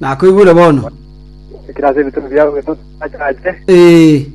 Nakoigure bono. Oikire ase ebituri biao bitoto obachache, Ee.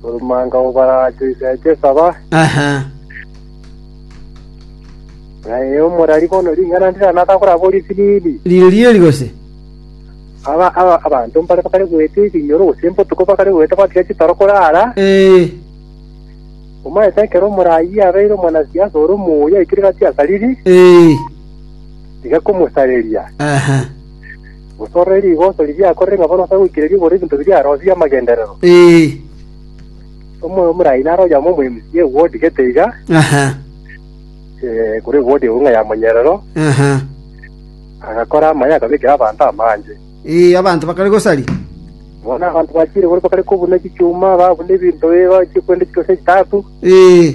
orumanga obarache oiseche esaba, Aha. naye omorari bono ring'ana ndira natakoraba ori siriri. Rire rieri gose? Aba aba abanto mbare bakare goeta ebinyoro gose mbotuko bakare goeta batiga chitoro korara. Ee. Omaete ekero omoraai abeire omonasiasa ore omoyo aikire gati asariri, Ee. tiga komosareria. Gose orore rigoso riria yakorire ng'a bono ase goikera riobora ebinto biria arosie amagenderero. Omoyo omoraai naro oyamo omoyomisia ewodi gete iga, eh, korwa ewodi eunga ya monyerero, agakora amaye akabekera abanto amange. Ee, abanto bakare gosari. Bono abanto bachiire boria bakare kobuna chichuma, babuna ebinto ee, bachie kwenda chitose chitatu. Ee.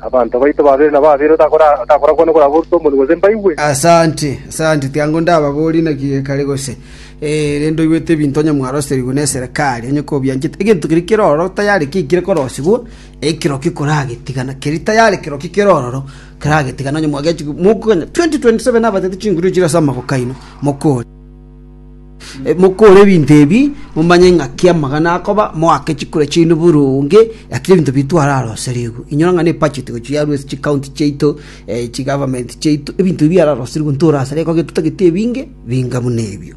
Abanto baito babere na babere otakorakwane koraba orute omonu gose mbaigwe. Asante, asante, tiango ndababorie naki gekare gose. Ee, rende oigwete ebinto onye mwaroserigwe neserekari, onye kobianchete, egento keria kere ororo tayari ki kire korosigwa, ekero ki koragetigana, keri tayari kero ki kere ororo keragetigana onye mwagechigwa mokoganya 2027 nabatete chinguru chire ase amaboko aino, mokore. Mokore ebinto ebi, momanye ng'aki amagana akoba, moake chikure chiaino buru onge, gaki ebinto biaito are aro aserigwe. Inyora ng'a nebudget gochi yarwa ase chicounty chiaito, eh, chigovernment chiaito, ebinto ebi biare aro aserigwe, ntorasare goka gento tagete ebinge, binga buna ebio.